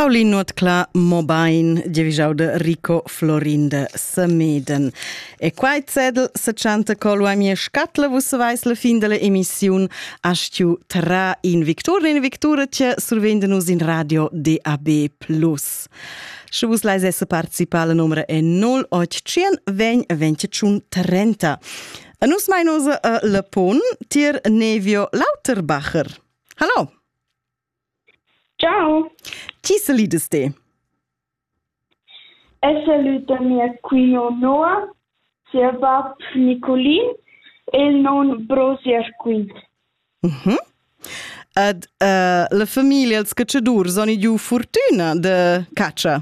Paulin Notcla Mobain, divigiau de Rico Florin de Semeden. E quai zedel se chanta col a mia scatla vus vais la fin della emissiun astiu tra in victura in victura tia survende nus in radio DAB+. Sche vus leis esse participar la numera è 0800 20 25 30. A nus mai nus uh, le pon tier Nevio Lauterbacher. Hallo! Ciao. Ti selides te? Eg salud da mia cuina noua, sia bab Niculin e il non bro sia scuin. Mhm. Ed uh, la famiglia, ils catschadurs, han giu fortuna da catscha?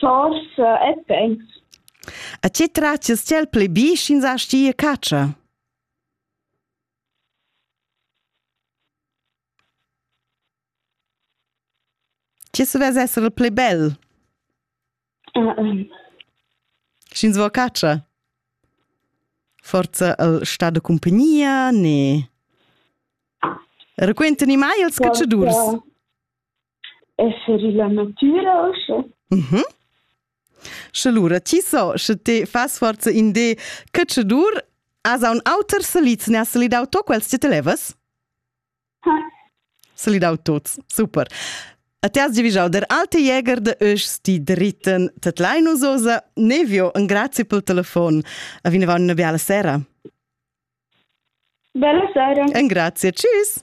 Forsa e pens. A tge tratgas ti el pli bi sch'ins asti e catscha? Tge savess esser il pli bel? Uh, um. Sch'ins vo catscha? Forza el sta da cumpagnia ne? Raquentani mai ils catschadurs? Esser illa natüra usche? Mhm. Sche lura ti so, sche te fas forza in de cacciadur, as ha un auter salit, ne has salid auto quels ti te levas? Ha. Salid autos, super. A te has divigiau der alte Jäger de Öschs, die dritten, tet Linus Osa, nevio, un grazie pel telefon. A vineva una biala sera. Bella sera. Un grazie, tschüss.